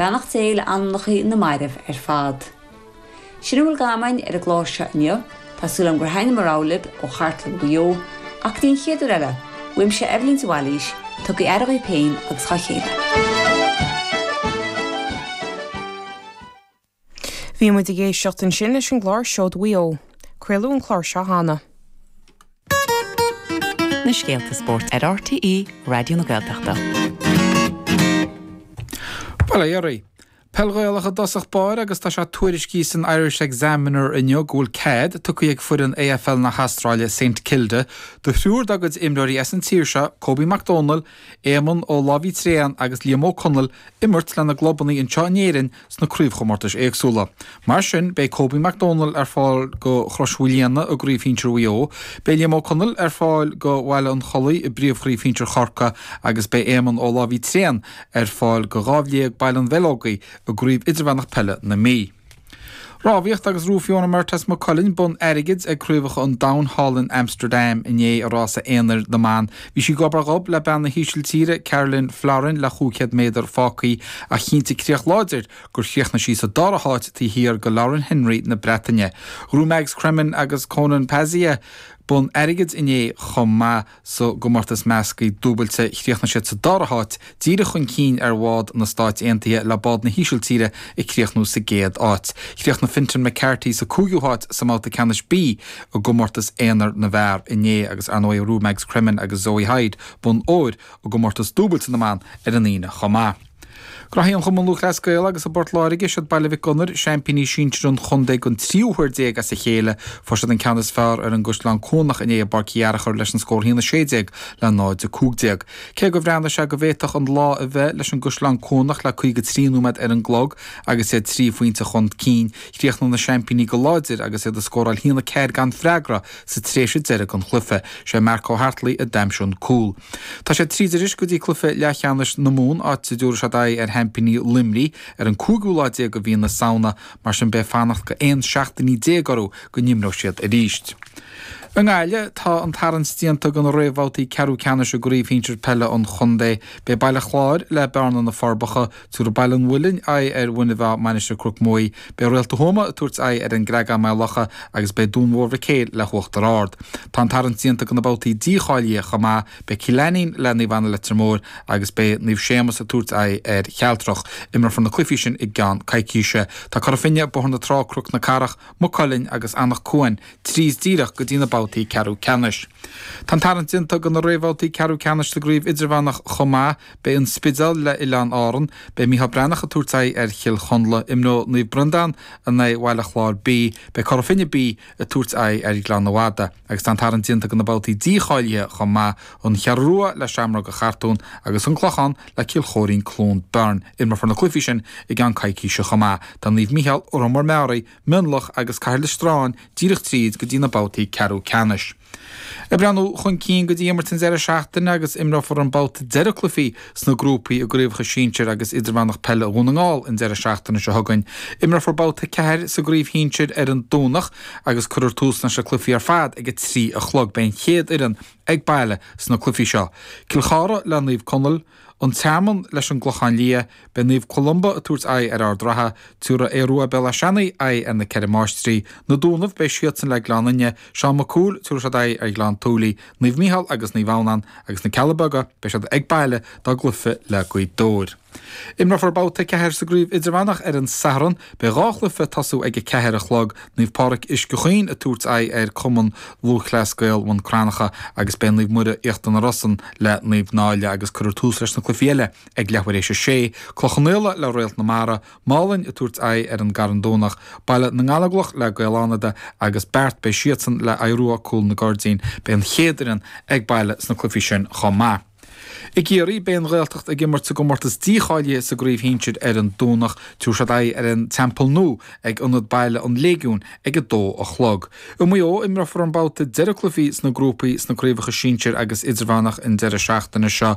Beannacht Dé le anamnachaí na mairbh ar fad. Sin a bhfuil dh'am againn ar an gclár seo inniu, tá súil agam gur thaitin mo rogha libh ó chartlann Mhaigh Eo, ach go dtí an chéad uair eile, uaimse Eibhlín de Bhailís, tugaigí aire dhaoibh féin agus dhá chéile. Bhí muid ag éisteacht ansin leis an gclár Seoid Mhaigh Eo. Craoladh an clár seo cheana. na scéalta spóirt ar RTÉ Raidió na Gaeltachta. Bail ó Dhia oraibh. Peil Ghaelach i dtosach báire agus tá sé tuairiscithe san Irish Examiner inniu go bhfuil cead tugtha ag foireann AFL na hAstráile, Saint Kilda, do thriúr dá gcuid imreoirí as an tír seo, Kobe Mac Domhnaill, Éamonn Ó Lámhaí Tréan agus Liam Ó Conaill, imirt lena gclubanna anseo in Éirinn sna craobhchomórtais éagsúla. Mar sin, beidh Kobe Mac Domhnaill ar fáil do Chrois Mhaoilíona i gCraobh Shinsir Mhaigh Eo, beidh Liam Ó Conaill ar fáil do Bhaile an Chollaigh i bPríomhchraobh Shinsir Chorcaí agus beidh Éamonn Ó Lámhaí Tréan ar fáil do Dhamhliag Baile an Bheileogaigh i gCraobh Idirmheánach Peile na Mí. Rámhaíocht agus ghnóthaigh Fiona Murtagh as Maigh Cuilinn bonn airgid ag Craobhacha an Domhain thall in Amsterdam inné i rás aonair na mban Bhí sí gob ar ghob le bean na hÍsiltíre, Karolien Florijn, le chúig chéad méadar fágtha ach chinntigh críoch láidir gur chríochnaigh sí sa dara háit taobh thiar de Lauren Henry na Breataine. Ghnóthaigh Mags Cremen agus Konan Pazzaia bonn airgid inné chomh maith sa gcomórtas measctha dúbailte, chríochnaigh siad sa dara háit díreach chun cinn ar bhád na Stáit Aontaithe le bád na hÍsiltíre ag críochnú sa gcéad áit. Chríochnaigh Fintan McCarthy sa 5ú háit sa mbabhta ceannais B i gcomórtas aonair na bhfear inné agus ar ndóigh ghnóthaigh Mags Cremen agus Zoe Hyde bonn óir i gcomórtas dúbailte na mban ar an Aoine chomh maith. Gnóthaí an Cumann Lúthchleas Gael agus i bPort Láirge, siad Baile Mhic Gonair, seaimpíní sinsir an chontae den tríú huair déag as a chéile. Fuair siad an ceann is fearr ar an gCaisleán Cuanach inné i bPáirc Uí Fhearchair leis an scór 1 16 le 0 15. Cé gur bhreathnaigh sé go bhféadfadh an lá a bheith leis an gCaisleán Cuanach le 53 nóiméad ar an gclog agus iad trí phointe chun cinn, chríochnaigh na seaimpíní go láidir agus iad ag scóráil haon a ceathair gan freagra sa tréimhse deiridh den chluiche. Sé Mark O'Hartley a d'aimsigh an cúl. Tá siad tríd arís go dtí cluiche leathcheannais na Mumhan, áit a dtabharfaidh siad aghaidh ar sheaimpíní Luimnigh ar an cúigiú lá déag de mhí na Samhna, mar sin beidh fanacht de 11 seachtainí orthu go n-imreoidh siad arís. I nGaillimh, tá an tarraingt déanta do na réamhbhabhtaí ceathrú ceannais i gCraobh Shinsir Peile an Chontae. Beidh Baile Chláir, le Bearna, Na Forbacha, tabharfaidh Baile an Mhuilinn, aghaidh ar Mhuine Mheá, Mainistir Chnoc Muaidhe. Beidh Réalta Thuama ag tabhairt aghaidh ar an gCreagán, Maigh Locha, agus beidh Dún Mór Mhic Éil le hUachtar Ard. Tá an tarraingt déanta do na babhtaí dícháilithe chomh maith. Beidh Cill Ainnín, le Naomh Anna Leitir Móir, agus beidh Naomh Séamas ag tabhairt aghaidh ar Chealtrach. Imreofar na cluichí sin i gceann coicíse. Tá Cora Finne, Bóthar na Trá, Cnoc na Cathrach, Maigh Cuilinn agus Anach Cuain tríd díreach go dtí na babhtaí ceathrú ceannais. Tá an tarraingt déanta do na réamhbhabhtaí ceathrú ceannais sa gCraobh Idirmheánach chomh maith. Beidh An Spidéal le Oileáin Árann. Beidh Micheál Breathnach ag tabhairt aghaidh ar Chill Chonla. Imreoidh Naomh Breandán in aghaidh Bhaile Chláir B. Beidh Cora Finne B ag tabhairt aghaidh ar Ghleann na Madadh. Agus tá an tarraingt déanta do na babhtaí dícháilithe chomh maith. An Cheathrú Rua le Seamróga Chartúin agus An Clochán le Cill Choirín-Cluain Bheirn. Imreofar na cluichí sin i gceann coicíse chomh maith. Tá Naomh Micheál, Órán Mór-Meáraí, Mionlach agus Cathair Loistreáin díreach tríd go dtí na babhtaí ceathrú ceannais. Ag breathnú chun cinn go dtí imirt an deireadh seachtaine agus imreofar an babhta deireadh cluichí sna grúpaí i gCraobhacha Sinsir agus Idirmheánach Peile Dhún na nGall an deireadh seachtaine seo chugainn. Imreofar babhta 4 sa gCraobh Shinsir ar an Domhnach agus cuirfear tús leis na cluichí ar fad ag a trí a chlog. Beidh an chéad fhoireann ag baile sna cluichí seo, Cill Chartha le Naomh Conaill, An Tearmann leis an gClochán Liath, beidh Naomh Columba ag tabhairt aghaidh ar Ard Ratha, tabharfaidh Aodh Rua Béal Átha Seanaidh aghaidh ar na Ceithre Máistrí, Na Dúnaibh, beidh siadsan le Gleann Fhinne, Seán Mac Cumhaill, tabharfaidh siad aghaidh ar Ghleann tSúilí, Naomh Micheál agus Naomh Adhamhnán, agus na Cealla Beaga, beidh siad ag baile dá gcluife le Gaoth Dobhair. Imreofar babhta a ceathair sa gcraobh idirmheánach ar an Satharn. Beidh dhá chluife ag tosú ag a ceathair a chlog, Naomh Pádraig Uisce Chaoin ag tabhairt aghaidh ar Cumann Lúthchleas Gael Bhun Cranncha agus beidh Naomh Muire Íochtar na Rosann le Naomh Náille agus cuirfear tús leis na cluichí eile ag leathuair tar éis a sé. Cloich Cheann Fhaola le Réalt na Mara, Málainn ag tabhairt aghaidh ar an gCarn Domhnach, Baile na nGallóglach le Gaeil Fhánada agus Beart beidh siadsan le Aodh Rua, Cúil na gCuirridín. Beidh an chéad fhoireann ag baile sna cluichí sin chomh maith. I gCiarraí, beidh an Ghaeltacht ag imirt sa gcomórtas dícháilithe sa gcraobh shinsir ar an Domhnach. Tabharfaidh siad aghaidh ar an Teampall Nua ag Ionad Baile an Léigiúin ag a dó a chlog. I Maigh Eo, imreofar an babhta deireadh cluichí sna grúpaí sna craobhacha sinsir agus idirmheánach an deireadh seachtaine seo.